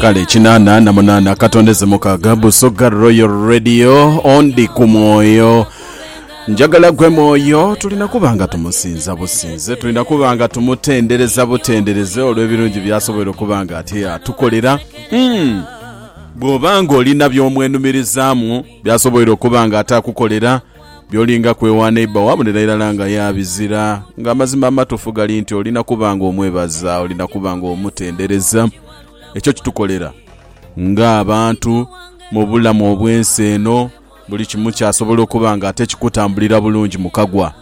Kale kinana na munana katondeze mukaga Busoga Royal Radio ondi ku mwoyo njagala gwe mwoyo tulina kuba nga tumusinza businze tulina kuba nga tumutendereza butendereze olw'ebirungi byasobola okuba nga ate atukolera hmm. bw'oba ng'olina by'omwenumirizaamu byasobola okuba nga ate akukolera Byolinga kwewa neighbour wo abonera irala nga ya bizira nga amazima amatufu gali nti olina kuba nga omwebaza, olina kuba nga omutendereza. Ekyo kitukolera nga abantu mubulamu obwensi eno buli kimu kyasobola okuba nga ate kikutambulira bulungi mukagwa.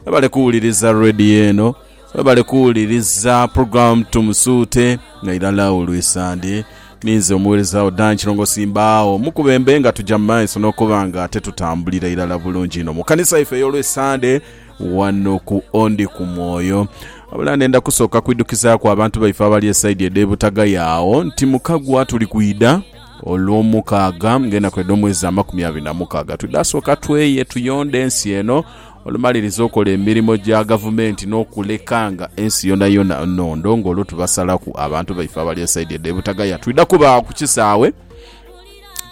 Webale kuwuliriza radio eno. Webale kuwuliriza program Tumusuute nga irala olwisande. Ninze omuwerezawo Dan Kirongosi mbaagho mukubembe nga tuja mumaiso nokuba nga ate tutambulira irala bulungi inho mukanisa yaife eyolwisande wano ku Ondi ku Mwoyo. Wabula ndenda kusooka kwidhukizaaku abantu baife abali esaidi edhe Butagaya agho nti mukagwa tuli kwidha olwomukaaga nga enaku edhomwezi amakumi abiri namukaaga. Twidha sooka tweye tuyonde ensi eno. Olumaliriza okola emirimo gya gavumenti n'okulekanga ensi yonayona nhondo ng'olwo tubasalaku abantu baife abali esaidi edho e Butagaya. Twidha kuba agho ku kisaawe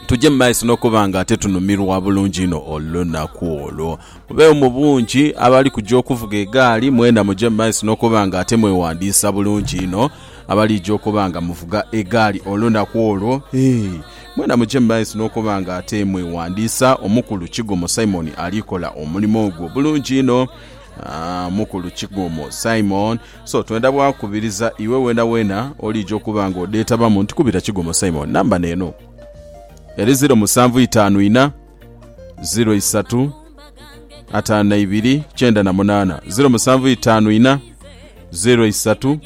tuje mu maiso n'okuba nga ate tunumirwa bulungi inho olunaku olwo. Mubeegho mu bungi abali kuja okuvuga egaali, mwena muje mu maiso n'okuba nga ate mwewandiisa bulungi inho abaliija okuba nga muvuga egaali olunaku olwo. Hee! Mwena muje mu maiso n'okuba nga ate mweghandiisa. Omukulu Kigomo Simon ali kola omulimo ogwo bulungi inho. Mukulu Kigomo Simon. So twenda bwa kubiriza iwe weenaweena oliija okuba nga odheetabamu nti kubira Kigomo Simon. Namba n'eno eri ziro musanvu itaanu ina, ziro isatu, ataanu na ibiri, kyenda na munaana. Ziro musanvu itaanu ina, ziro isatu.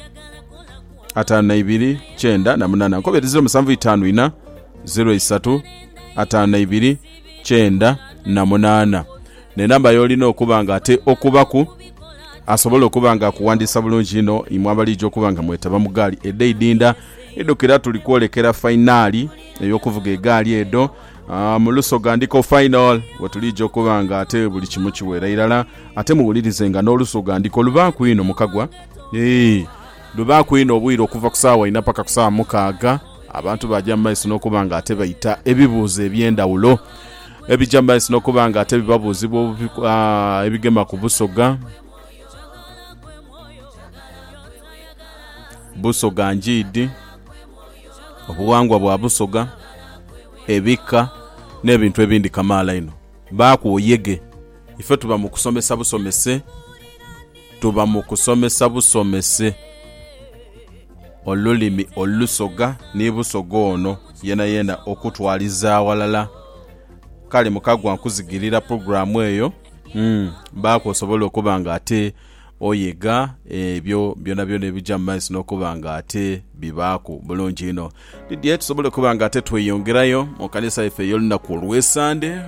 ataanu na ibiri kyenda na munana nkobere ziro musanvu itaanu ina ziro isatu ataanu na ibiri kyenda na munana nenamba yolina okuba nga ate okubaku asobola okuba nga akuwandiisa bulungi ino imwe abalija okuba nga mwetaba mu gaali edho eidinda idukira tuli kwolekera fainaali eyokuvuga egaali edho Ah, mu lusoga ndiko final wetulija okuba nga ate buli kimu kiweera irala ate muwulirize nga n'olusoga ndiko lubaaku ino mukagwa Eeh. Lubaaku inho obwire okuva ku saawa inha paka ku saawa mukaaga, abantu baaja mu maiso n'okuba nga ate baita ebibuuzo eby'endhawulo ebija mu maiso n'okuba nga ate bibabuuzibwa ebigema ku Busoga, Busoga Ngiidi, obughangwa bwa Busoga, ebika n'ebintu ebindi kamaala inho. Baaku oyege. Ife tuba mu kusomesa busomese, tuba mu kusomesa busomese olulimi Olusoga ni Busoga ono yenayena okutwaliza aghalala. Kale Mukagwa nkuzigirira pulogulaamu eyo, Baaku osobole okuba nga ate Oyega ebyo byonabyona ebija mu maiso n'okuba nga ate bibaaku bulungi inho. Ni dhi tusobola okuba nga ate tweyongerayo mu kanisa yaife ey'olunaku olw'Esande?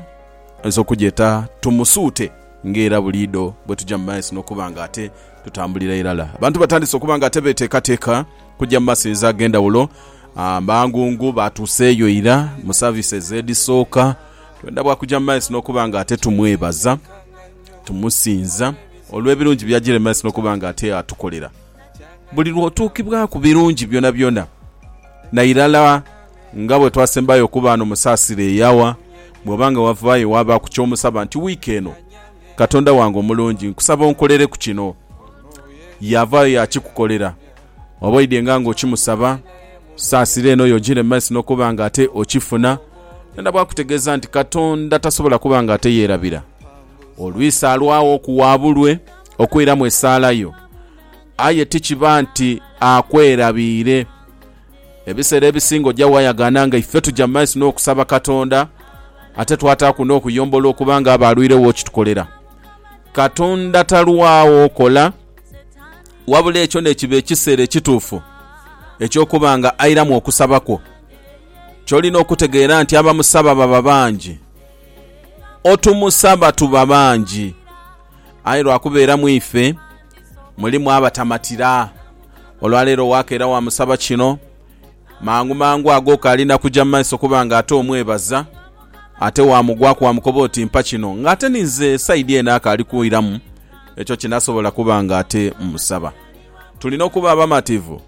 Oyinza okugyeta Tumusuute ng'era buliidho bwe tuja mu maiso n'okuba nga ate tutambulira irala. Abantu batandise okuba nga ate beeteekateeka kugya mu masinza ag'endhawulo. Amangungu baatuuseeyo ira mu services edhisooka. Twendha bwa kugya mu maiso n'okuba nga ate tumwebaza. tumusinza olw'ebirungi by'agiremeresa n'okuba nga ate atukolera. Buli lw'otuukibwaku birungi byonabyona, nairala nga bwe twasembayo okuba ghano mu Saasira ey'Awa, bw'oba nga wavaayo waabaaku ky'omusaba nti, Wiiki eno, Katonda wange omulungi, nkusaba onkolereku kino. Yaavaayo yaakikukolera. Oba oidhenga nga okimusaba, saasira eno yo ojire mu maiso n'okuba nga ate okifuna. Nenda bw'akutegeeza nti Katonda tasobola kuba nga ate yeerabira. Olwisi alwagho okuwaabulwe okwiramu esaala yo, aye ti kiba nti akwerabiire. Ebiseera ebisinga oja waayagaana nga ife tuja mu maiso n'okusaba Katonda ate twataaku n'okuyomba olw'okuba nga aba alwiregho okitukolera. Katonda talwagho kola. wabula ekyo nekiba ekiseera ekituufu eky'okuba nga airamu okusaba kwo. Kyolina okutegeera nti abamusaba baba bangi. Otumusaba tuba bangi, aye lwakubeera mu ife mulimu abatamatira. Olwaleero wakeera wamusaba kino. Mangu mangu ago Kaali na kuja mu maiso kuba nga ate omwebaza. Ate waamugwaku waamukoba oti, Mpa kino. Nga ate ni nze saidi eno akaali kwiramu ekyo kye nasobola kuba nga ate mmusaba. Tulina okuba abamativu.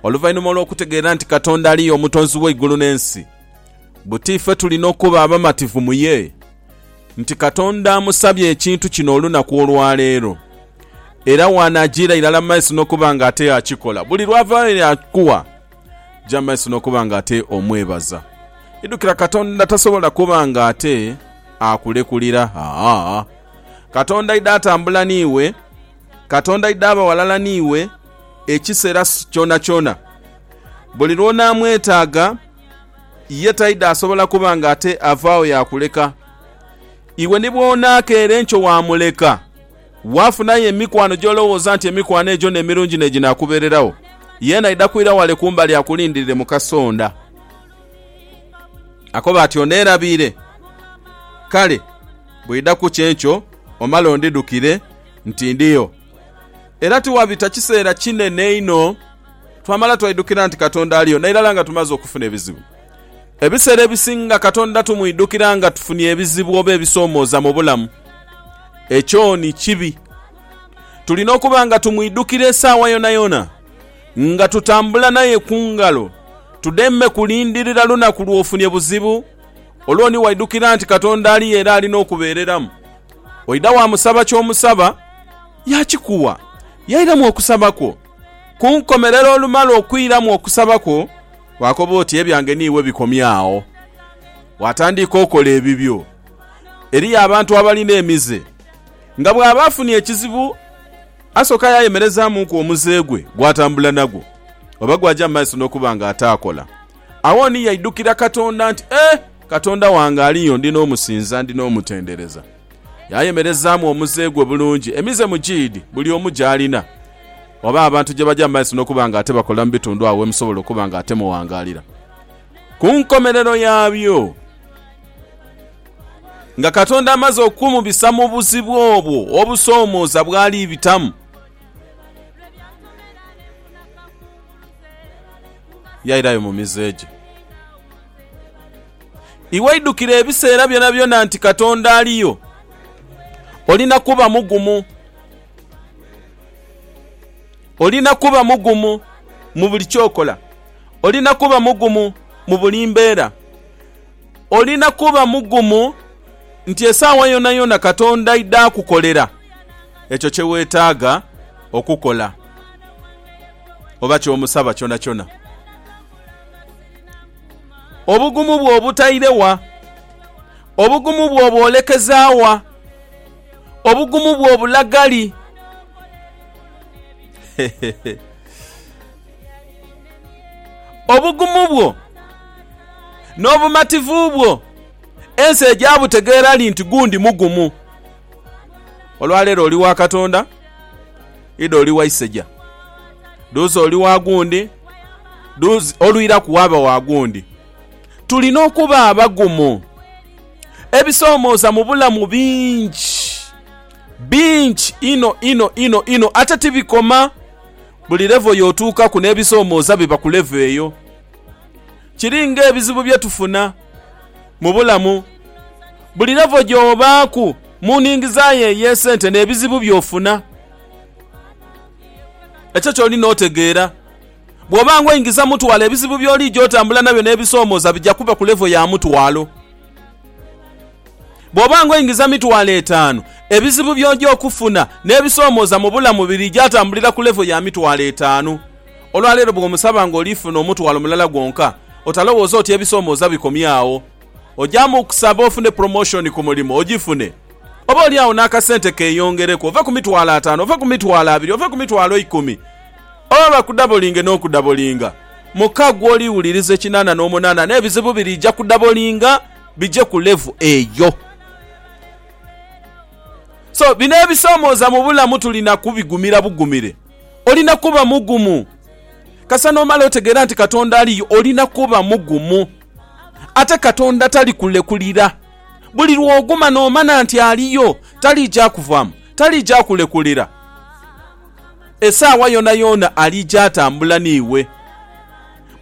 Oluvainhuma olw'okutegeera nti Katonda ali ye Omutonzi w'eigulu n'ensi, buti ife tulina okuba abamativu mu ye? nti Katonda amusabye ekintu kino olunaku olwa leero, era waanaajiira irala mu maiso n'okuba nga ate akikola. Buli lw'ava eri Yakuwa, ja mu maiso n'okuba nga ate omwebaza. Idhukira, Katonda tasobola kuba nga ate akulekulira. Aa, Katonda aidha atambula n'iwe. Katonda aidha aba ghalala n'iwe ekiseera kyonakyona. Buli lw'onaamwetaaga, ye taidha asobola kuba nga ate avaagho yaakuleka. Iwe ni bw'onaakeera enkyo waamuleka, waafunayo emikwano gy'olowooza nti emikwano egyo n'emirungi n'eginaakubeereragho, yeena aidha kwira wale kumbali akulindirire mu kasonda. Akoba ati, Oneerabiire? Kale, bw'eidha kukya enkyo omale ondhidhukire nti ndiyo. Era tiwabita kiseera kinene inho twamala twaidhukira nti Katonda aliyo nairala nga tumaze okufuna ebizibu. Ebiseera ebisinga Katonda tumwidhukira nga tufunye ebizibu oba ebisoomooza mu bulamu. Ekyo ni kibi. Tulina okuba nga tumwidhukira esaawa yonayona, nga tutambula naye ku ngalo, tudeme kulindirira lunaku lw'ofunye buzibu, olwo ni waidhukira nti Katonda aliyo era ali n'okubeereramu. Oidha waamusaba ky'omusaba, yaakikuwa. Yairamu okusaba kwo. Ku nkomerero olumala okwiramu okusaba kwo, waakoba oti, Ebyange ni iwe bikomye agho. Waatandiika okola ebibyo. Eriyo abantu abalina emize, nga bw'aba afunye ekizibu asooka yaayemerezaamuku omuze gwe gw'atambula nagwo, oba gw'aja mu maiso n'okuba nga ataakola. Agho ni yaidhukira Katonda nti, Eh! Katonda wange aliyo, ndi n'omusinza, ndi n'omutendereza. Yaayemerezaamu omuze gwe bulungi. Emize mugiidi buli omu gy'alina, oba abantu gye bagya mu maiso n'okuba ng'ate bakola mu bitundu agho we musobola okuba ng'ate muwangaalira. Ku nkomerero yaabyo, nga Katonda amaze okumubisa mu buzibu obwo obusoomooza bw'ali bitamu, yairayo mu mize gye. Iwe idhukira ebiseera byonabyona nti Katonda aliyo. Olina kuba mugumu. Olina kuba mugumu mu buli kyokola. Olina kuba mugumu mu buli mbeera. Olina kuba mugumu nti esaawa yonayona Katonda aidha akukolera ekyo kye weetaaga okukola oba ky'omusaba kyonakyona. Obugumu bwo obutaire wa? Obugumu bwo obwolekeza wa? Obugumu bwo obulaga li? Obugumu bwo n'obumativu bwo ensi eja butegeera li nti gundi mugumu? Olwaleero oli wa Katonda. Ida oli wa iseja. Dhuuza oli wa gundi. Dhuuza olwiraku waaba wa gundi. Tulina okuba abagumu. Ebisoomooza mu bulamu bingi. Bingi inho inho inho inho. Ate tibikoma. Buli levo y'otuukaku n'ebisoomooza biba ku levo eyo. Kiri ng'ebizibu bye tufuna mu bulamu. Buli levo gy'obaaku mu nhingiza yo ey'esente n'ebizibu by'ofuna. Ekyo ky'olina otegeera. Bw'oba ng'oingiza mutwalo, ebizibu by'oliija otambula nabyo n'ebisoomooza bija kuba ku levo ya mutwalo. Bw'oba ng'oingiza mitwalo etaanu, ebizibu by'oja okufuna n'ebisoomooza mu bulamu biriija tambulira ku levo ya mitwalo etaanu. Olwa leero bw'omusaba ng'oli funa omutwalo mulala gwonka, otalowooza oti ebisoomooza bikomye agho. Ojamu okusaba ofune promotion ku mulimo, ogifune. Oba oli agho n'akasente keeyongereku, ove ku mitwalo ataano, ove ku mitwalo abiri, ove ku mitwalo ikumi. Oba bakudabolinge n'okudabolinga. Muka gw'oli wuliriza ekinaana n'omunaana n'ebizibu biriija kudabolinga bije ku level eyo. So, bino ebisoomooza mu bulamu tulina kubigumira bugumire. Olina kuba mugumu. Kasita n'omala otegeera nti Katonda aliyo, olina kuba mugumu. Ate Katonda talikulekulira. Buli lw'oguma n'omana nti aliyo, taliija kuvaamu, taliija kulekulira. Esaawa yoonayoona aliija atambula n'iwe.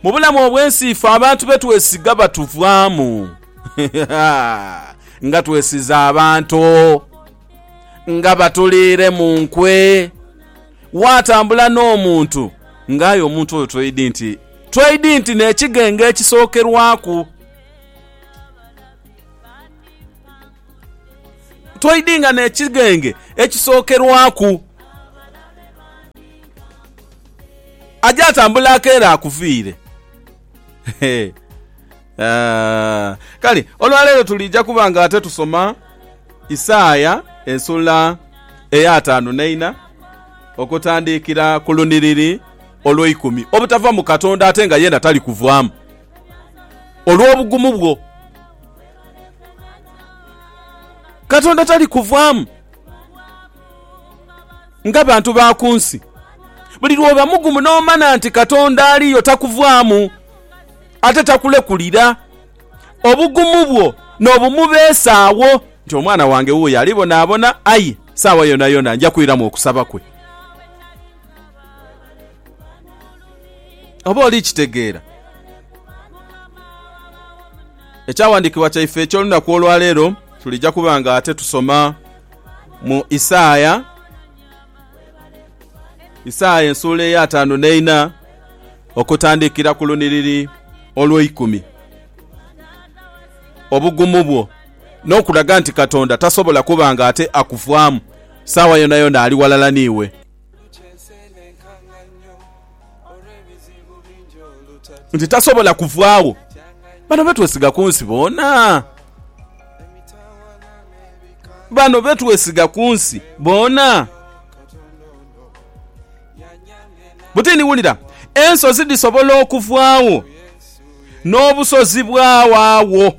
Mu bulamu obw'ensi ife abantu be twesiga batuvaamu. Ha, ha, ha! Nga twesize abantu! nga batuliire mu nkwe. Waatambula n'omuntu, nga aye omuntu oyo tweidi nti, tweidi nti n'ekighenga ekisookerwaku. Tweidi nga n'ekighenga ekisookerwaku. Aja atambula akeera akuviire. Hee. Eeh, kale olwa leero tuliija kuba nga ate tusoma Isaia esula ey'ataanu n'eina okutandiikira ku lunhiriri olw'eikumi. Obutava mu Katonda ate nga yeena tali kuvaamu olw'obugumu bwo. Katonda tali kuvaamu nga bantu ba ku nsi. Buli lw'oba mugumu n'omana nti Katonda aliyo takuvaamu. ate takulekulira. Obugumu bwo n'obumubeesaagho. Nti, Omwana wange wuuyo alibonaabona, aye saawa yonayona nja kwiramu okusaba kwe. Oba oli kitegeera? Ekyawandiikibwa kyaife eky'olunaku olwaleero, tulija kuba nga ate tusoma mu Isaaya. Isaaya ensuula ey'ataanu n'eina okutandikira ku lunhiriri olweikumi. Obugumu bwo, n'okulaga nti Katonda tasobola kuba nga ate akuvaamu, saagha yonayona ali ghalala n'iwe. nti tasobola kuvaagho. Bano be twesiga ku nsi boona. Bano be twesiga ku nsi boona. Butini wulira, ensozi dhisobola okuvaagho, n'obusozi bwawaagho.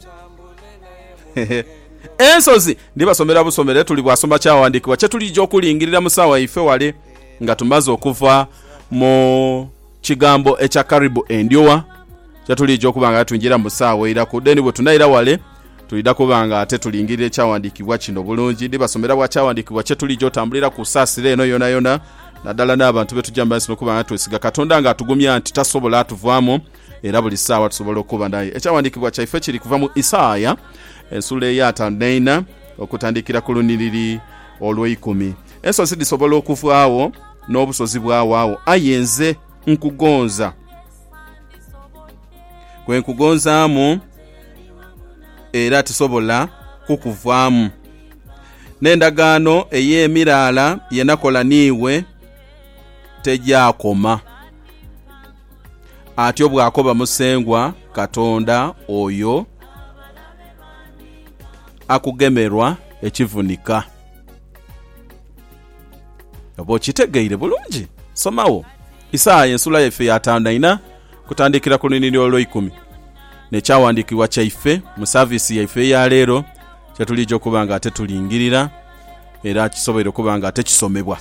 Hehe. Ensozi, ndibasomera busomere tuli bwasoma kyawandiikibwa kye tulija okulingirira mu saawa yaife wale. Nga tumaze okuva mu kigambo ekya karibu endyowa, kye tuliidha okuba nga twingira mu saawa eiraku. Then bwe tunaira wale, twidha kuba nga ate tulingirira ekyawandiikibwa kino bulungi. Ndhibasomera bwa kyawandiikibwa kye tuliidha otambulira ku saasira eno yonayona, naddala n'abantu be tugya mu maiso n'okuba nga twesiga Katonda ng'atugumya nti tasobola tuvaamu era buli saawa tusobola okuba naye. Ekyawandiikibwa kyaife kiri kuva mu Isaaya ensula eyaataanu n'eina okutandikira ku lunhiriri olweikumi. Ensozi dhisobola okuvaagho, n'obusozi bwawaagho, aye nze nkugonza. Gwe nkugonzaamu era tisobola kukuvaamu. N'endagaano ey'emiraala ye nakola n'iwe tegyakoma, atyo bw'akoba Musengwa Katonda oyo akugemerwa ekivunika. Oba okitegeire bulungi? Somagho Isaaya esula yaife ya taanu aina okutandikira ku luinhiri olweikumi. N'ekyawandiikibwa kyaife mu saviisi yaife eya leero kye tuliija okuba nga ate tulingirira era kisoboire okuba nga ate kisomebwa.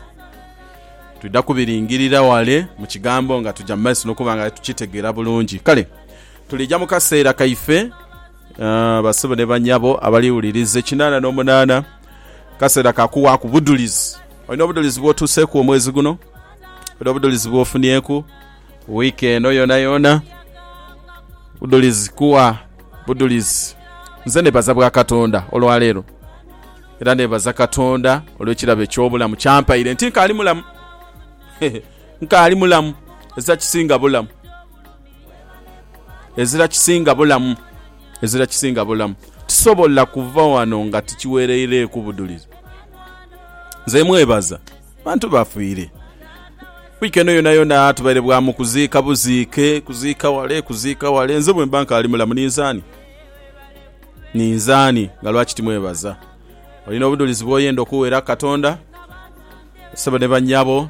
Twidha kubiringirira ghale mu Kigambo nga tuja mu maiso n'okuba nga aye tukitegeera bulungi. Kale tuliija mu kaseera kaife. Aah basebo ne banyabo abali wuliriza ekinana no munana kasera ka kuwaku budulizi. Olina obudulizi bwotuseku omwezi guno? Olina obudulizi bwofunieku week eno yona yona? Budulizi kuwa budulizi. Nze nebaza bwa Katonda olwa lero era nebaza Katonda olwe kirabo ekyo bulamu kyampaire nti nkali mulamu. Hee nkali mulamu ezakisinga bulamu. Ezira kisinga bulamu, ezira kisinga bulamu. Tisobola kuva wano nga tikiwereireeku budhulizi. Nze mwebaza, bantu bafiire. Wiiki eno yonayona tubaire bwa mu kuziika buziike, kuziika wale, kuziika wale. Nze bwemba nkaali mulamu ninze ani? Ninze ani nga lwaki timwebaza? Olina obudhulizi bwoyenda okuweera Katonda? Ssebo ne bannyabo.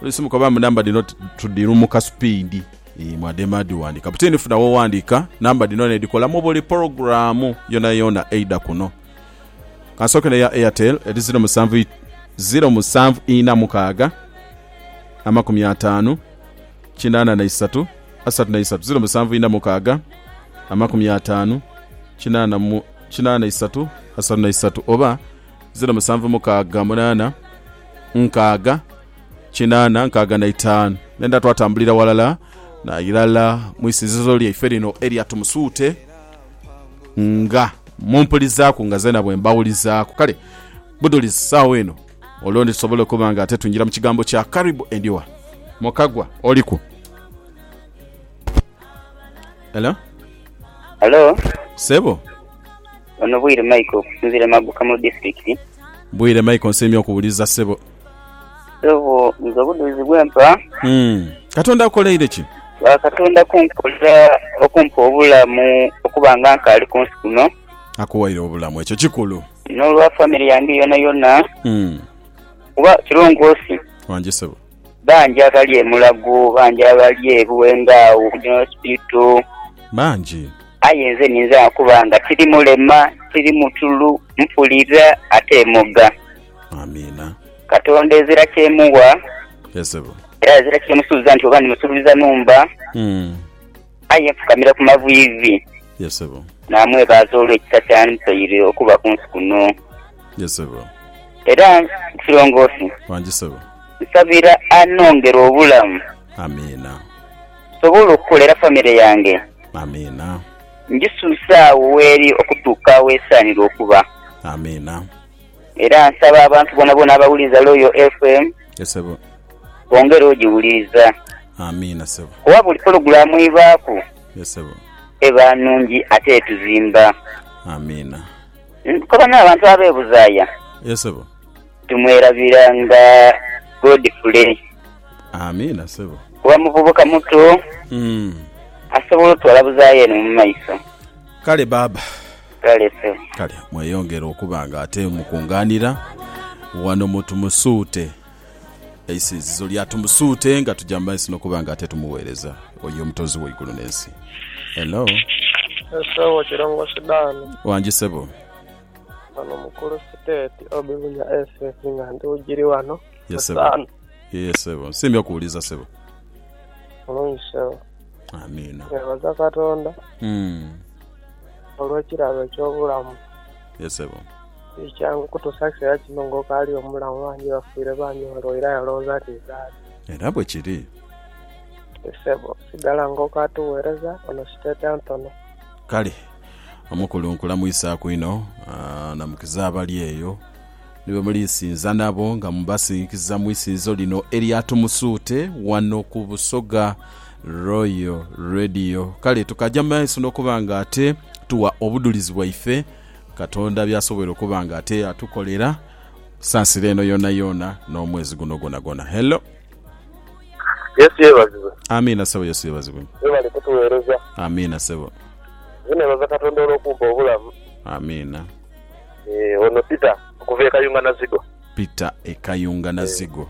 Oluisi mukoba mbu namba dhino tudhilumuka supiidi mwadema dhighandika. Kapiteeni funa woghandika namba dhino n'edhikolamu buli pologulaamu yoonayoona eidha kuno. Kansooke n'eya Airtel eri ziro musanvu ziro musanvu ina mukaaga amakumi ataanu kinaana na isatu asatu na isatu ziro musanvu ina mukaaga amakumi ataanu kinaana mu kinaana isatu asatu na isatu oba ziro musanvu mukaaga munaana nkaaga kinaana nkaaga na itaanu nenda twatambulira walala nairala mu isinzizo lyaife lino erya Tumusuute nga mumpulizaaku nga zeena bwe mbawulizaaku kale budulizi saawa eno olwo ndi tusobole okuba nga ate twingira mu kigambo kya Karibu Endiwa Mukagwa oliku Hello Halo, Sebo Ono Bwire Michael okusinzira e Maguka mu disitulikiti. Bwire Michael nsiimye okuwuliriza ssebo. Ssebo nze obudhuuzi bwempa. Umm katonda akukoleire ki? Ba katonda kunkolera okumpa obulamu okuba nga nkaali kunsi kuno. Akuwaire obulamu ekyo kikulu. Nolwa family yange yonayona. Umm. Kuba kilongoosi. Wangi ssebo. Bangi abali e Mulago, bangi abali e Buwenda agho ku General Hospital. Bangi. Aye nze ninza okuba nga tiri mulema, tiri mutulu, mpulira ate moga. Amiina. Katonda ezira kyemuwa. Ye ssebo. Era ezira kyemusuubiza nti oba ndimusuubiza numba. Umm. Aye yeefukamira ku maviivi. Ye ssebo. Naamwebaaza olw'ekisa ky'amupaire okuba ku nsi kuno. Ye ssebo. Era Kirongosi. Wangi ssebo. Nsabira anongere obulamu. Amiina. Nsobole okukolera famire yange. Amiina. Ngisuuse agho w'eri okutuuka w'esaanira okuba. Amiina. Era nsaba abantu boonaboona abawuliriza Royal FM bongere ogiwuliriza kuba buli pologulaamu ebaaku eba nnungi ate etuzimba. Nkoba n'abantu ab'e Buzaaya tumwerabira nga Godfrey kuba muvubuka muto asobola otwala Buzaaya eno mu maiso. Kale pe. Kale mweyongere okuba nga ate mukungaanira wano mu Tumusuute. Eisinzizo lya Tumusuute nga tuja mu maiso n'okuba nga ate tumuweereza oyo Omutonzi w'eigulu n'ensi. Hello. Esebo Kirongosi Dan. Wangi sebo. Wano mukulu Siteti Obi Bunya SS nga ndi wujiri wano. Yes sebo. Yee sebo. Nsiimye okuwuliza sebo. Mulungi sebo. Amiina. Twebaza Katonda Mm. olw'ekirabo eky'obulamu. Yes, sebo. Ti kyangu kutuusa ku kiseera kino ng'okaali omulamu. Bangi bafiire bangi balwaire aye olowooza nti nzaali. Era bwe kiri. Ti ssebo. Sigala ng'okaatugheereza ono siteeta ntono. Kale. Omukulu nkulamwisaaku inho. Aa, namukiza abali eyo. Ni bwe mulinsinza nabo nga mubasinhikiza mu isinzizo lino erya Tumusuute wano ku Busoga Royal Radio. Kale tukaja mu maiso n'okuba nga ate tuwa obudhulizi bwaife Katonda by'asoboire okuba nga ate atukolera ku sansiro eno yoonayoona n'omwezi guno gwonagwona. Hello. Yesu yebazibwe. Amiina ssebo. Yesu yebazibwe. Webale kutuweereza. Amiina ssebo. Nze nebaza Katonda olw'okumpa obulamu. Amiina. Eh, ono Peter okuva e Kayunga Nazigo. Peter e Kayunga Nazigo.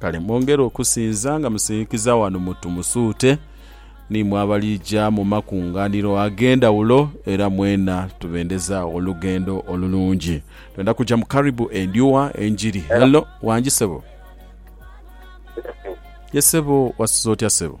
Kale mwongere okusinza nga musinhikiza wano mu Tumusuute n'imwe abaliija mu makunganiro ag'endhawulo era mwena tubendeza olugendo olulungi. Twenda kuja mu Karibu Endhuwa Enjiri. Hello, wangi ssebo. Ye ssebo, wasuze otya ssebo?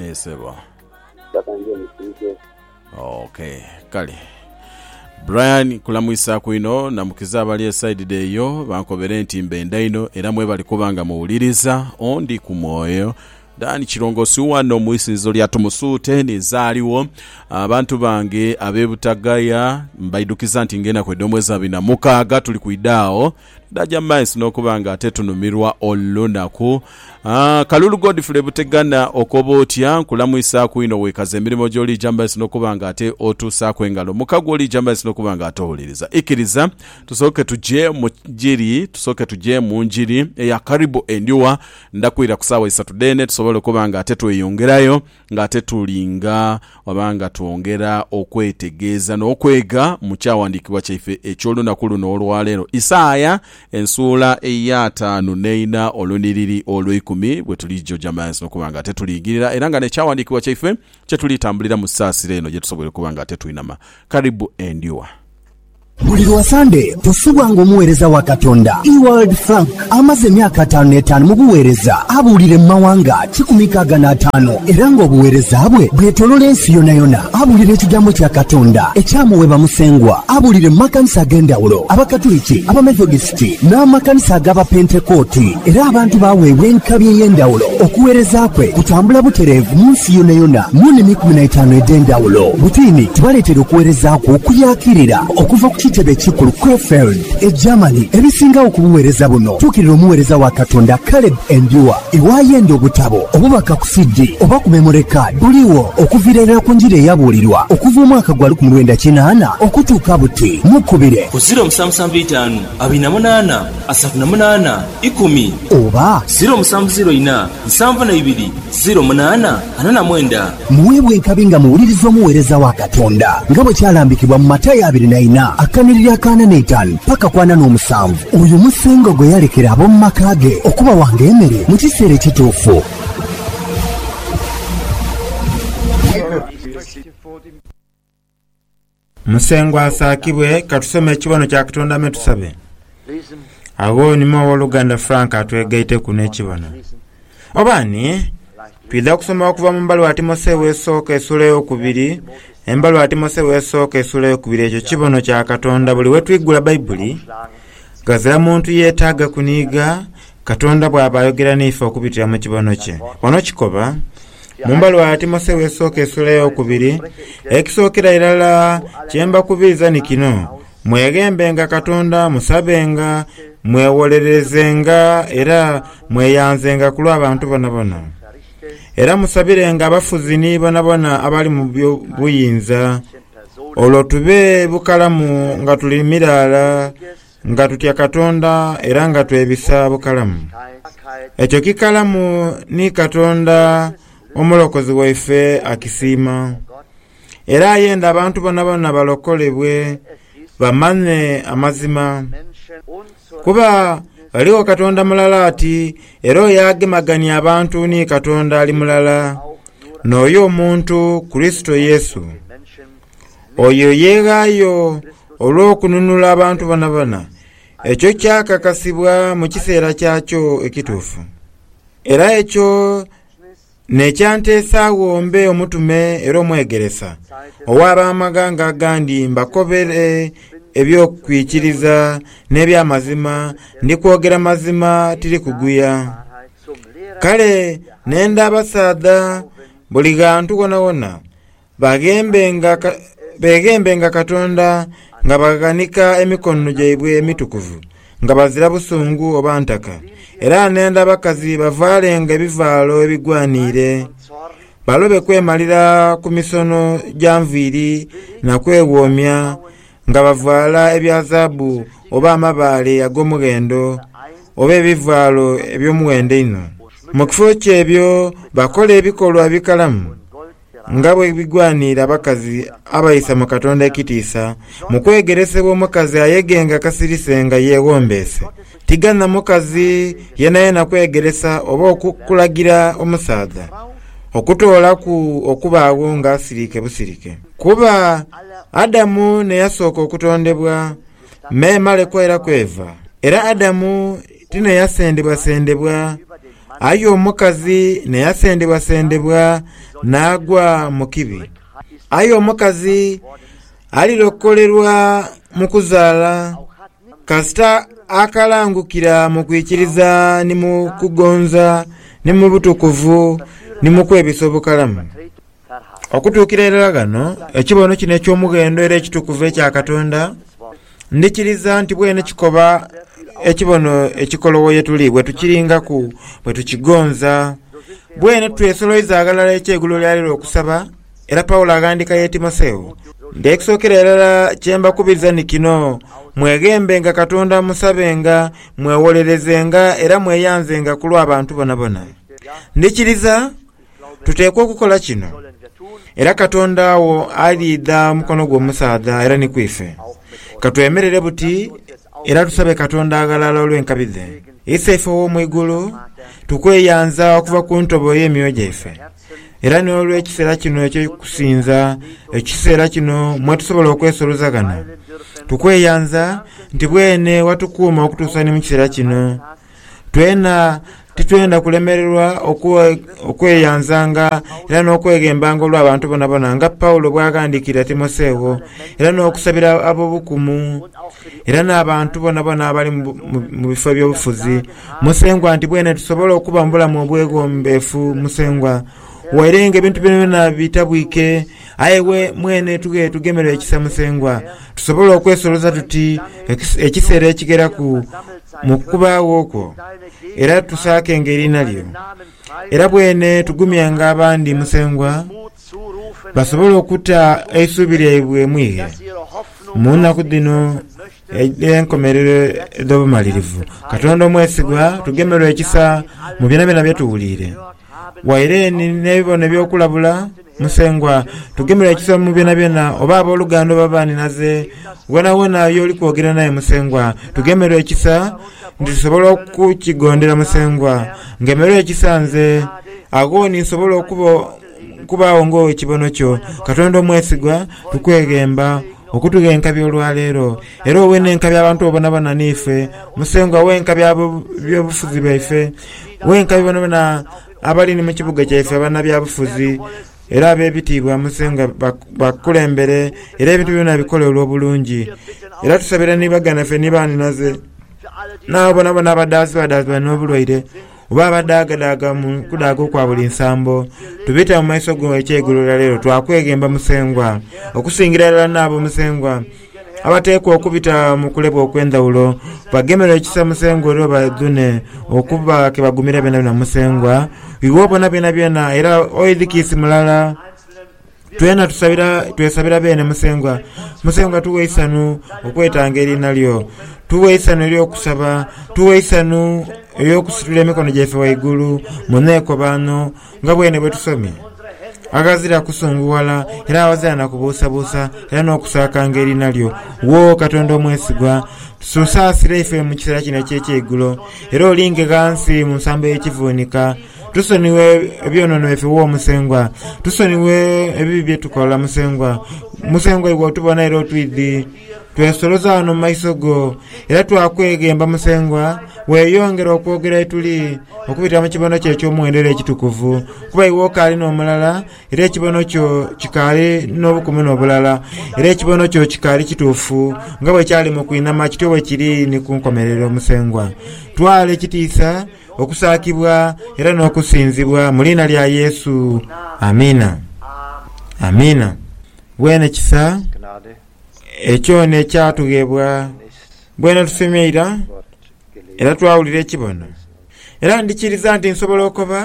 Ee sebo. Mpaka nze musiike. Ok kale Brian kulamwisaku inho namukiza abali esaidi dhe eyo bankobere nti mbenda inho era mwebali kuba nga muwuliriza ondi ku mwoyo. Dan Kirongosi wano mu isinzizo lya Tumusuute ninze aligho. Abantu bange abe Butagaya mbaidhukiza nti nga enaku edh'omwezi abiri na mukaaga tuli kwidha agho N'aja mu maiso n'okuba nga atetunumirwa olunaku. Kalulu Godfrey Butegana, okoba otya? Nkulamwisaaku inho wekaza emirimo gyo liija mu maiso n'okuba nga ate otuusaaku engalo muka gwo liija mu maiso n'okuba nga ate owuliriza. Ikiriza tusooke tuje mu njiri, tusooke tuje mu njiri eya Karibu Endhuwa. Ndhakwira ku saawa isatu dheene tusobole okuba nga ate tweyongerayo. Nga tetulinga oba nga twongera okwetegeeza n'okwega mu kyawandiikibwa kyaife eky'olunaku luno olwaleero, Isaia ensuula ey'ataanu n'eina olunhiriri olweikumi, bwetulija ojamaazi n'okuba nga tetuliigirira era nga n'ekyawandiikibwa kyaife kyetuliitambulira mu saasira eno gyetusoboire okuba nga tetwinama. Karibu endhuwa. Buli lwa Sande tusubwa ng'omuweereza wa Katonda Ewald Frank amaze emyaka ataanu n'etaanu mu buweereza, abuulire mu mawanga kikumi nkaaga n'ataanu era ng'obuweereza bwe bwetolola ensi yonayona. Abuulira ekigambo kya Katonda ekyamuweebwa Musengwa abuulire mu makanisa ag'endhawulo, Abakatuliki, Abamethodist, Pentekooti n'amakanisa ag'Abapentekooti, era abantu baaweebwa enkabi ey'endhawulo. Okuweereza kwe kutambula butereevu mu nsi yonayona mu nnimi ikumi na itaanu edh'endhawulo. Butiini tubaleetera okuweereza kwe okuyaakirira okuva ku kitebe ekikulu Krefeld, e Germany. Ebisingagho ku buweereza buno tuukirira omuweereza wa Katonda Caleb Endua. Iwaayo yenda obutabo, obubaka ku CD, oba ku memory card buliwo okuviira irala ku njiri eyabuulirwa okuva omwaka gwa lukumi lwenda kinaana okutuuka buti. Mukubire. Ku ziro musanvu musanvu Amakumi eitaanu abaina munaana, asatu na munaana, ikumi. Oba. Ziro musanvu ziro ina, nsanvu na ibiri, ziro munaana, ana na mwenda. Muweebwe enkabi nga muwuliriza omuweereza wa Katonda, nga bwe kyalambikibwa mu Matayo abiri na ina akanhiriri akaana n'eitaanu paka ku ana n'omusanvu. Oyo musengo gwe yalekera ab'omu maka ge okubawanga emere mu kiseera ekituufu. Musengwa asaakibwe, ka tusome ekibono kya Katonda me tusabe. Agho onime ow'oluganda Frank atwegaiteku n'ekibono. Oba ani? Twidha kusoma okuva mu mbaluwa Timotheo esooka esuula ey'okubiri, embaluwa Timotheo esooka esuula ey'okubiri. Ekyo kibono kya Katonda buli we twigula Baibuli. Ghazira muntu yeetaaga kuniiga Katonda bw'aba ayogera n'ife okubitira mu kibono kye. Wano kikoba mu mbalo ya Timotheo esooka esuula ey'okubiri, Ekisookera irala kye mbakubiiza ni kino, mweghembenga Katonda, musabenga, mwewolererezenga, era mweyanzenga ku lw'abantu bonabona. Era musabirenga abafuzi ni bonabona abali mu by'obuyinza, olwo tube bukalamu nga tuli miraala Nga tutya Katonda era nga twebisa bukalamu. Ekyo kikalamu ni Katonda Omulokozi waife akisiima. Era ayenda abantu bonabona balokolebwe bamanye amazima. Kuba ghaligho Katonda mulala ati era oyo agemagania abantu ni Katonda ali mulala, n'oyo omuntu Kurisito Yesu. Oyo yeeghaayo olw'okununula abantu bonabona. Ekyo kyakakasibwa mu kiseera kyakyo ekituufu. Era ekyo n'ekyanteesaagho mbe omutume era omwegeresa ow'ab'amaghanga agandi mbakobere eby'okwikiriza n'eby'amazima, ndi kwogera mazima tiri kuguya. Kale n'enda abasaadha buli ghantu ghonawona. Beeghembenga Katonda nga baghanika emikono gyaibwe emitukuvu, nga bazira busungu oba ntaka. Era n'enda abakazi bavaalenga ebivaalo ebigwaniire, balobe kwemalira ku misono gya nviiri na kweghoomya nga bavaala ebya zaabu oba amabaale ag'omughendo, oba ebivaalo eby'omughendo einho. Mu kifo ky'ebyo bakola ebikolwa ebikalamu, Nga bwe bigwanira abakazi abaisa mu Katonda ekitiisa, mu kwegeresebwa omukazi ayegenga kasirise nga yeewombeese. Tiganha mukazi yenayena kwegeresa oba okulagira omusaadha okutoolaku okubaagho ng'asirike busirike. Kuba Adamu n'eyasooka okutondebwa, memale kwera kweva, era Adamu tineyasendebwasendebwa, aye omukazi neyasendebwasendebwa naagwa mu kibi. Aye omukazi alirokolerwa mu kuzaala, kasita akalangukira mu kwikiriza ni mu kugonza ni mu butukuvu ni mu kwebisa obukalamu. Okutuukira irala ghano, ekibono kino eky'omughendo era ekitukuvu ekya Katonda, ndhikiriza nti bwene kikoba ekibono ekikolowo ye tuli bwe tukiringaku, bwe tukigonza. Bwene twesoloiza ghalala eky'egulo lya leero okusaba, era Paulo aghandiika ye Timotheo, nti ekisookera irala kye mbakubiriza ni kino, mweghembenga Katonda, musabenga, mwewolerezenga, era mweyanzenga ku lw'abantu bonabona. Ndhikiriza. Tuteekwa okukola kino, era Katonda agho aliidha mukono gw'omusaadha era ni ku ife. Ka twemerere buti era tusabe Katonda aghalala olw'enkabi dhe. Ise ife ow'omu igulu, tukweyanza okuva ku ntobo ey'emyoyo gyaife, era n'olw'ekiseera kino eky'okusinza, ekiseera kino mwe tusobola okwesoloza ghano. Tukweyanza nti bwene watukuuma okutuusa ni mu kiseera kino. Twena titwenda kulemererwa okweyanzanga era n'okweghembanga olw'abantu bonabona, nga Paulo bw'aghandiikira Timotheo, era n'okusabira ab'obukumu era n'abantu bonabona abali mu bifo eby'obufuzi, Musengwa, nti bwene tusobole okuba mu bulamu obwegombeefu, Musengwa, waire ng'ebintu byonabyona bitabwike. Aye iwe mwene tughe tugemerwe ekisa Musengwa, tusobole okwesoloza tuti ekiseera ekigheraku mu kukubaagho kwo, era tusaakenga eriina lyo. Era bwene tugumyanga abandi Musengwa, basobole okuta eisuubi lyaibwe mu ighe mu nnaku dhino edh'enkomerero edh'obumalirivu. Katonda omwesigwa, tugemerwe ekisa mu byonabyona bye tuwuliire. Waire ni n'ebibono eby'okulabula, Musengwa, tugemerwe ekiso mu byonabyona, oba ab'oluganda oba banhinaze, woonawoona y'oli kwogera n'aye, Musengwa. Tugemerwe ekisa nti tusobola okukigondera, Musengwa. Ngemerwa ekisa nze, agho ni nsobola okuba, okubaagho ng'Ow'ekibono Kyo, Katonda omwesigwa. Tukweghemba okutughenkabya olwa leero. Era owe n'enkabya abantu bo boonaboona n'ife, Musengwa. Owe enkabya ab'eby'obufuzi bwaife. Wenkabi bonabona abali ni mu kibuga kyaife abanabyabufuzi era ab'ebitiibwa mu nsi nga bakukulembere era ebintu byona bikole olw'obulungi. Era tusabire ni baganaffe ni baanhinaze n'abo bonabona abadaazibwadaazibwa n'obulwaire oba abadaagadaaga mu kudaaga okwa buli nsambo. Tubita mu maiso go ekyeigulo lya leero twakweghemba Musengwa, okusingira irala n'abo Musengwa abateekwa okubita mu kulebwa okw'endhawulo bagemerwe ekisa Musengwa era obadhune okuba ke bagumira byonabyona Musengwa iwe obona byonabyona era oidhikiisi mulala twena tusabira twesabira beene Musengwa Musengwa tuwe eisanu okwetanga eriina lyo tuwe eisanu ery'okusaba tuwe eisanu ery'okusitula emikono gyaife waigulu mu neekobaano Nga bwene bwe tusomye, aghazira kusungughala era aghazira na kubuusabuusa era n'okusaakanga eriina lyo, wo Katonda omwesigwa, tusaasire ife mu kiseera kino eky'ekyeigulo, era olinge ghansi mu nsambo y'ekivuunika. Tusonighe ebyonoono byaife, wo Musengwa. Tusonighe ebibi bye tukola, Musengwa. Musengwa, iwe otubona era otwidhi. Twesoloza ghano mu maiso go era twakweghemba Musengwa weeyongere okwogera yetuli okubitira mu kibono kyo eky'omuwendo era ekitukuvu, kuba iwe okaali n'omulala era ekibono kyo kikaali n'obukumu n'obulala era ekibono kyo kikaali kituufu nga bwe kyali mu kwinama kityo bwe kiri ni ku nkomerero Musengwa. Twala ekitiisa, okusaakibwa era n'okusinzibwa mu liina lya Yesu. Amiina. Amiina. Weene kisa. Ekyona ekyatughebwa bwena tusomye ira era twawulira ekibona era ndikiriza nti nsobola okoba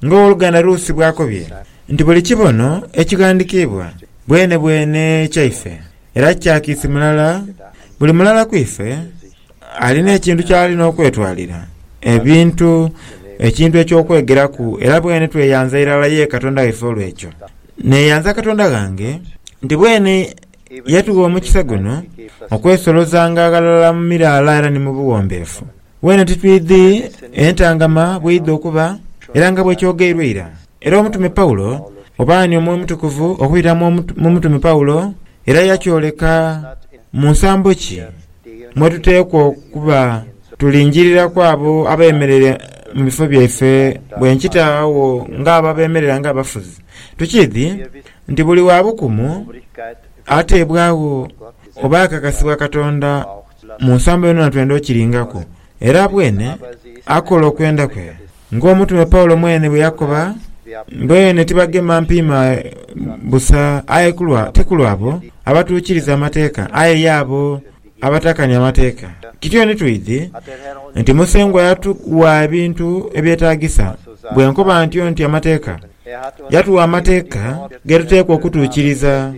nga owoluganda Rusi bwakobye nti buli kibono ekighandikibwa bwenebwene kyaife era kya kiisi mulala buli mulala kwife Alina ekintu ky'ali n'okwetwalira, ebintu, ekintu eky'okwegeraku, era bweni tweyanza irala ye Katonda waife olw'ekyo. Neeyanza Katonda ghange nti bweni yatugha omukisa guno okwesolozanga aghalala mu miraala era ni mu buwombeefu. Bweni titwidhi entangama bw'eidha okuba, era nga bwekyogeirwa ira, Era omutume Paulo, oba ani Omwoyo Omutukuvu okwira mu mutume Paulo era yakyoleka mu nsambo ki mwe tuteekwa okuba tulingiririraku abo abeemereire mu bifo byaife bwe nkita agho ng'abo abeemerera ng'abafuzi. Tukiidhi nti buli wa bukumu ateebwagho oba akakasibwa Katonda mu nsambo yonayoona twenda okiringaku, era bwene akola okwenda kwe Ng'omutume Paulo mwene bwe yakoba, Beene tibagema mpiima busa, aye ti kulwa abo abatuukiriza amateeka, aye y'abo abatakania amateeka. Kityo ni twidhi nti Musengwa yatugha ebintu ebyetaagisa. Bwe nkoba ntyo nti amateeka, yatugha amateeka ge tuteekwa okutuukiriza.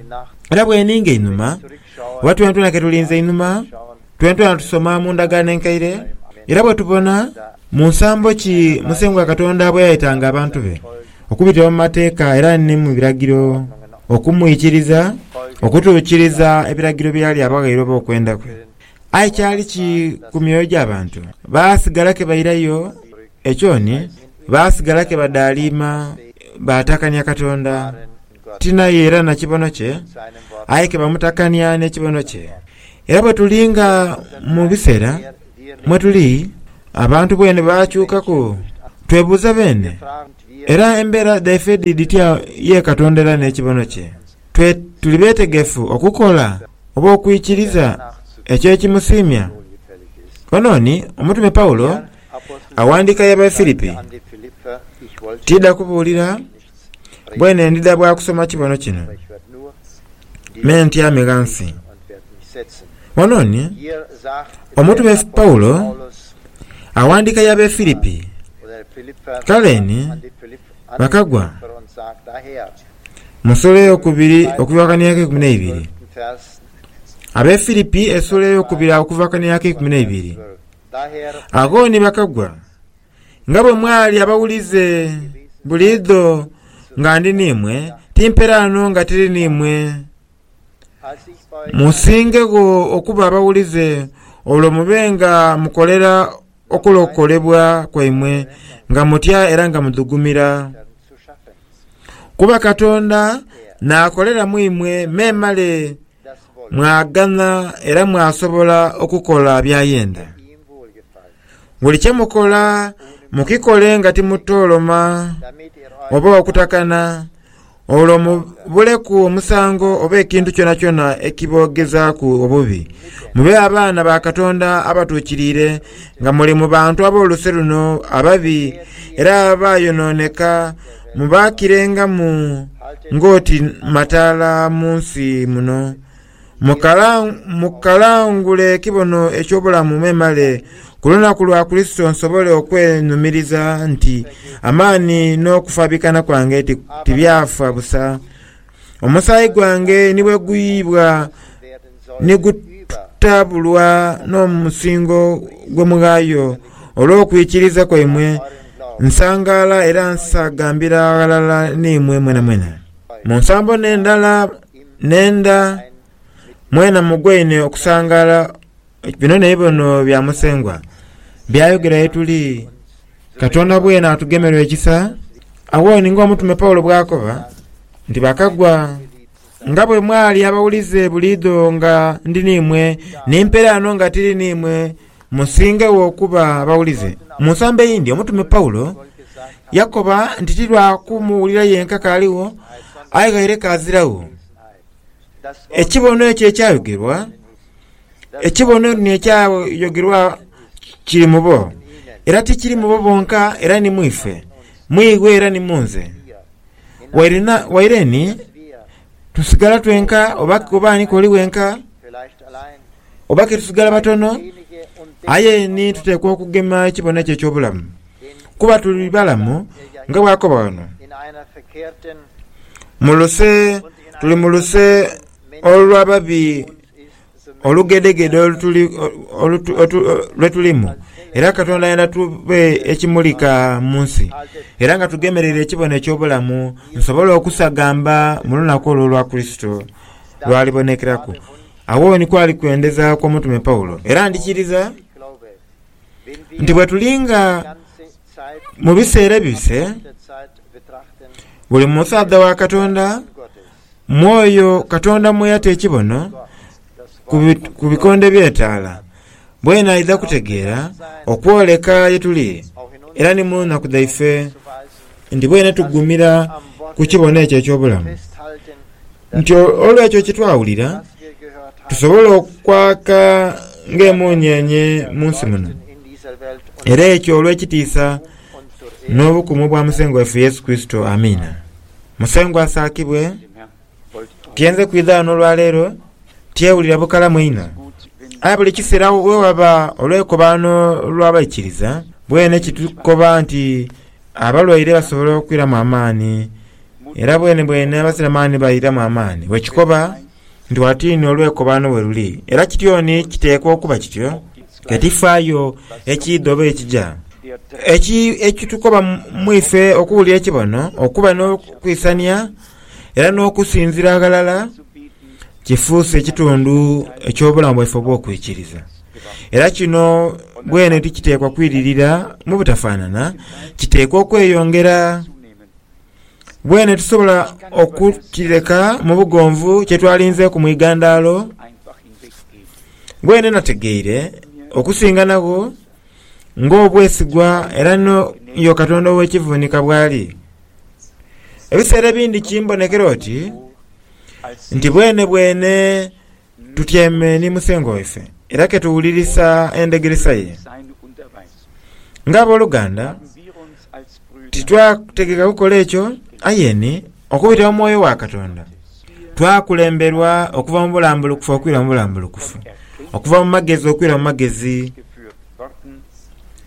Era bwe ninga einhuma, oba twenatwena ke tulinze einhuma, Twentuana tusoma mu Ndagaano Enkaire era bwetubona mu nsambo ki Musengwa Katonda bweyayetanga abantu be okubitira mu mateeka era ni mu biragiro okumwikiriza okutuukiriza ebiragiro byeyali abaghaire oba okwenda kwe. Aye kyali ki ku myoyo gy'abantu? Baasigala ke bairayo ekyoni, baasigala ke badaaliima, baatakania Katonda. tinaye era na kibono kye, aye ke bamutakania n'ekibono kye. Era bwe tuli nga mu bisera mwe tuli, abantu bwene baakyukaku, twebuuza bene, era embera dhaife dhi dhitya ye Katonda era n'ekibono kye? Twe tuli betegefu okukola oba okwikiriza ekyo ekimusiimya? Ono ni omutume Paulo awandiika y'Abafilipi. Tiidha kubuulira Bwene ndidha bwa kusoma kibono kino, me ntyame ghansi. Wano ni omutume Paulo aghandiika ya Befilipi, kale ni bakagwa mu nsuula ey'okubiri okubivakania ak'eikumi n'eibiri. Abefilipi esuula ey'okubiri okuvakania ak'eikumi n'eibiri. Agho ni bakagwa Nga bwe mwali abawulize buliidho nga ndi n'imwe, timperaano nga tiri n'imwe. Musingegho okuba abawulize, olwo mube nga mukolera okulokolebwa kwaimwe nga mutya era nga mudhugumira. Kuba Katonda naakolera mu imwe memale Mwaganha era mwasobola okukola by'ayenda. Buli kye mukola mukikole nga timutooloma oba okutakana, olwo mubuleku omusango oba ekintu kyonakyona ekiboogezaaku obubi. Mube abaana ba Katonda abatuukiriire nga muli mu bantu ab'oluse luno ababi era abaayonooneka, Mubaakirengamu ng'oti mataala mu nsi muno. Mukalangule ekibono eky'obulamu memale ku lunaku lwa Kurisito nsobole okwenhumiriza nti amaani n'okufaabikana kwange tibyafa busa. Omusaayi gwange ni bwe guyiibwa ni gutaabulwa n'omusingo gw'omughayo olw'okwikiriza kwaimwe, nsangaala era nsaagambira ghalala n'imwe mwenamwena. Mu nsambo n'endala n'enda, mwena mugwaine okusangaala Bino naibono bya Musengwa by'ayogera ye tuli, Katonda bwene atugemerwe ekisa. Agho ni ng'omutume Paulo bw'akoba nti, Bakagwa nga bwe mwali abawulize buliidho nga ndi n'imwe, ni mpere ano nga tiri n'imwe, musingegho okuba abawulize. Mu nsambo eyindi, omutume Paulo yakoba nti ti lwa kumuwulira yenka k'aligho, aye ghaire k'aziragho. Ekibono ekyo ekyayogerwa. Ekibonereino ekyayogerwa kiri mu bo, era ti kiri mu bo bonka, era ni mu ife, mu iwe era ni mu nze. Waire, na, waire ni tusigala twenka oba, oba ani k'oli wenka oba ke tusigala batono, aye ni tuteekwa okugema ekibone ekyo eky'obulamu, kuba tuli balamu nga bw'akoba ghano. Mu luse, tuli mu luse. olw'ababi olugedhegedhe lwe tulimu, era Katonda ayenda tube ekimulika mu nsi, era nga tugemereire ekibono eky'obulamu, nsobole okusagamba mu lunaku olwo olwa Kurisito lw'alibonekeraku. Agho ni kwali kwendeza kw'omutume Paulo, era ndhikiriza nti bwe tuli nga mu biseera ebibise, buli musaadha wa Katonda Mwoyo Katonda mwe yata ekibono ku bikonde by'etaala, bwenaidha kutegeera okwoleka ye tuli era ni mu naku dhaife, nti bwenetugumira ku kibono ekyo eky'obulamu, nti olw'ekyo kye twawulira, tusobola okwaka ng'emunyeenye mu nsi muno, era ekyo olw'ekitiisa n'obukumu bwa Musengwa waife Yesu Kurisito. Amiina. Musengwa asaakibwe, tye nze kwidha ghano olwaleero tyewulira bukalamu inho. Aye buli kiseera wewaba olwekobaano lw'abaikiriza, bwene kitukoba nti abalwaire basobola okwiramu amaani, era bwenebwene abasiramaani bairamu amaani. Bwekikoba Ndwaatu inho olwekobaano we luli, era kityoni kiteekwa okuba kityo. Ke tifaayo ekiidha oba ekija, ekitukoba mu ife okuwulira ekibono, okuba n'okwisania, era n'okusinzira ghalala, kifuuse ekitundu eky'obulamu bwaife obw'okwikiriza. Era kino bwene tikiteekwa kwiririra mu butafaanana, kiteekwa okweyongera. Bwene tusobola okukireka mu bugonvu kye twalinzeeku mu igandaalo. Bwene nategeire okusinganagho ng'obwesigwa era n'oyo Katonda ow'ekivuunika bw'ali. Ebiseera ebindi kimbonekera oti nti bwenebwene Tutyaime ni Musengwa waife era ke tuwulirisa endhegeresa ye. Ng'aboluganda, titwategeka kukola ekyo, aye ni okubitira mu mwoyo wa Katonda, twakulemberwa okuva mu bulambulukufu okwira mu bulambulukufu, okuva mu magezi okwira mu magezi.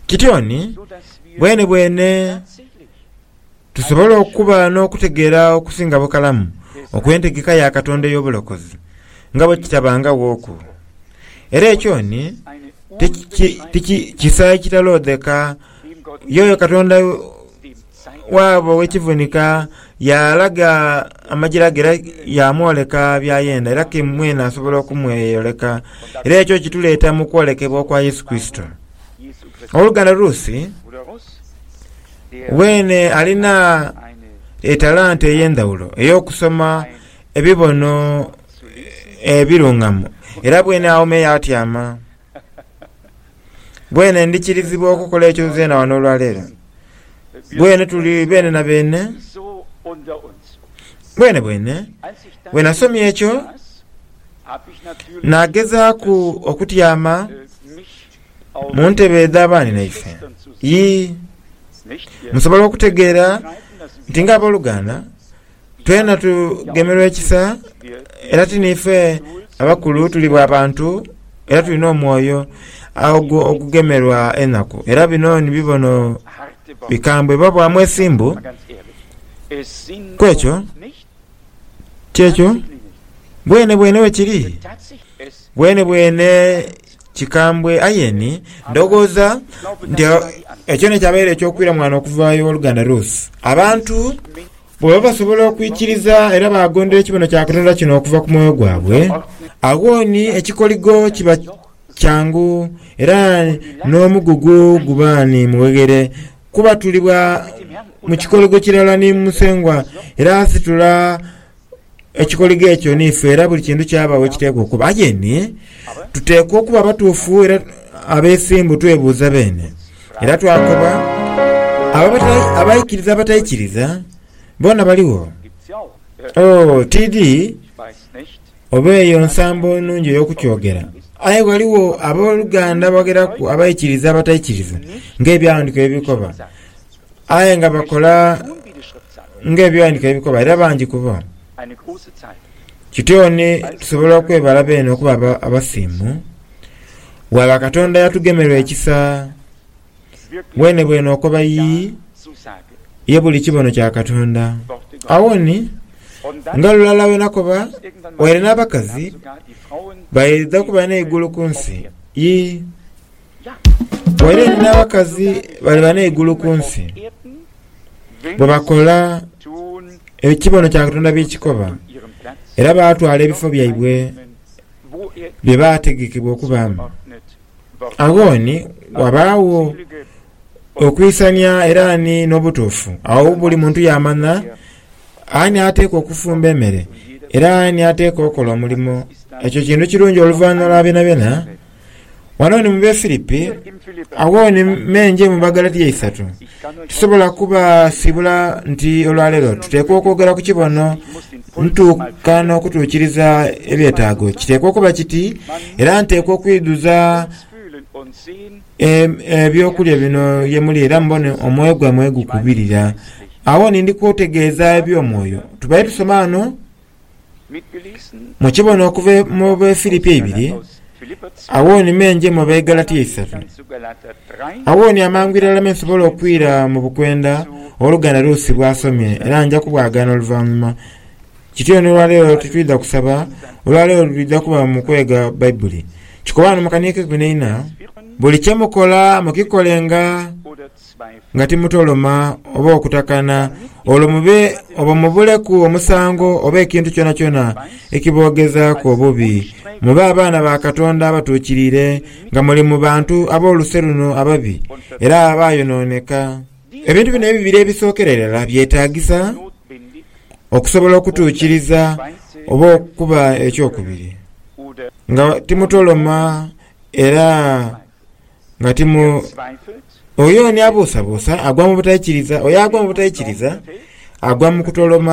Kityo ni bwenebwene Tusobola okuba n'okutegeera okusinga bukalamu okw'entegeka ya Katonda ey'obulokozi nga bwe kitabangaghooku. Era ekyo ni ti kisa ekitaloodheka. Y'oyo Katonda waabo ow'ekivunika yaalaga amagira ge era yaamwoleka by'ayenda, era ke mwene asobola okumweyoleka. Era ekyo kituleeta mu kwolekebwa kwa Yesu Kurisito. Ow'oluganda Ruth. Weene alina etalanta ey'endhawulo ey'okusoma ebibono ebirungamu, era bweene aghoma eyo atyama. Bweene ndikirizibwa okukola ekyo nzeena ghano olwaleero. Bweene tuli beene na beene. Bweene bweene, bwe nasomye ekyo, naagezaaku okutyama. mu ntebe edha baaninaife? Yii. Musobola okutegeera nti ng'aboluganda, twena tugemerwa ekisa era ti niife abakulu, tuli bwa bantu era tulina omwoyo ogugemerwa enaku. Era bino ni bibono bikambwe biba bwa mwesimbu ku ekyo. Ti ekyo? Bwenebwene bwe kiri. Bwenebwene. Kikambwe aye ni ndhoghoza nti ekyo nikyabaire eky'okwira mwana okuva ew'oluganda Ruth. Abantu bwebaba basobola okwikiriza era baagondera ekibono kya Katonda kino okuva ku mwoyo gwabwe, agho ni ekikoligo kiba kyangu era n'omugugu guba ni mugheghere kuba tuli bwa mu kikoligo kirala ni Musengwa era asitula Ekikoligo ekyo niife, era buli kintu kyaba we kiteekwa okuba. Aye ni, tuteekwa okuba abatuufu era abeesimbu, twebuuza beene. Era twakoba, abo abatai, abaikiriza abataikiriza, boona baligho. Oh, tidhi oba eyo nsambo nnungi ey'okukyogera, aye ghaligho ab'oluganda abagheraku abaikiriza abataikiriza, ng'Ebyawandiikibwa bwe bikoba. Aye nga bakola ng'ebighandiiko bye bikoba, era bangi ku bo. Kityo ni tusobola okwebala beene okuba aba- abasiimu, bwaba Katonda yatugemerwa ekisa bwenebwene okoba yi ye buli kibono kya Katonda. Agho ni nga lulala wenakoba waire n'abakazi baidha kuba n'eigulu ku nsi. Yi. Waire ni n'abakazi bali bana eigulu ku nsi, bwe bakola ebyo ekibono kya Katonda bye kikoba, era baatwala ebifo byaibwe bye baategekebwa okubaamu. Agho ni wabaagho okwisania era ni n'obutuufu. Agho buli muntu yaamanha ani ateekwa okufumba emere, era ani ateekwa okola omulimo. Ekyo kintu kirungi oluvanhuma lwa byonabyona. Wano ni mu Befilipi, agho ni me nje mu Bagalatia isatu. Tisobola kubasiibula nti olwaleero tuteekwa okwogera ku kibono ntuuka n'okutuukiriza ebyetaago. Kiteekwa okuba kiti, era nteekwa okwidhuza eby'okulya bino ye muli era mubone omwoyo gwaimwe gwe gukubirira. Agho ni ndi kutegeeza eby'omwoyo. Tubaire tusoma ghano Mukibona okuva mu Befilipi eibiri, agho ni me nje mu Begalatia eisatu, agho ni amangu irala me nsobola okwira mu bukwenda Oluganda Ruusi bw'asomye era nja kubwagaana oluvanhuma. Kityo ni olwaleero titwidha kusaba, olwaleero lwidha kuba mu kwega Baibuli. Kikoba ghano mu kaniika ekikwinaina, Buli kye mukola mukikolenga nga timutoloma oba okutakana, olwo mube obo mubuleku omusango oba ekintu kyonakyona ekiboogezaaku obubi. Mube abaana ba Katonda abatuukiriire, nga muli mu bantu ab'oluse luno ababi era abaayonooneka. Ebintu bino ebibiri ebisookera irala byetaagisa okusobola okutuukiriza oba okuba eky'okubiri, nga timutoloma era. nga ti mu. Oyo ni abuusabuusa agwa mu butaikiriza, oyo agwa mu butaikiriza agwa mu kutoloma.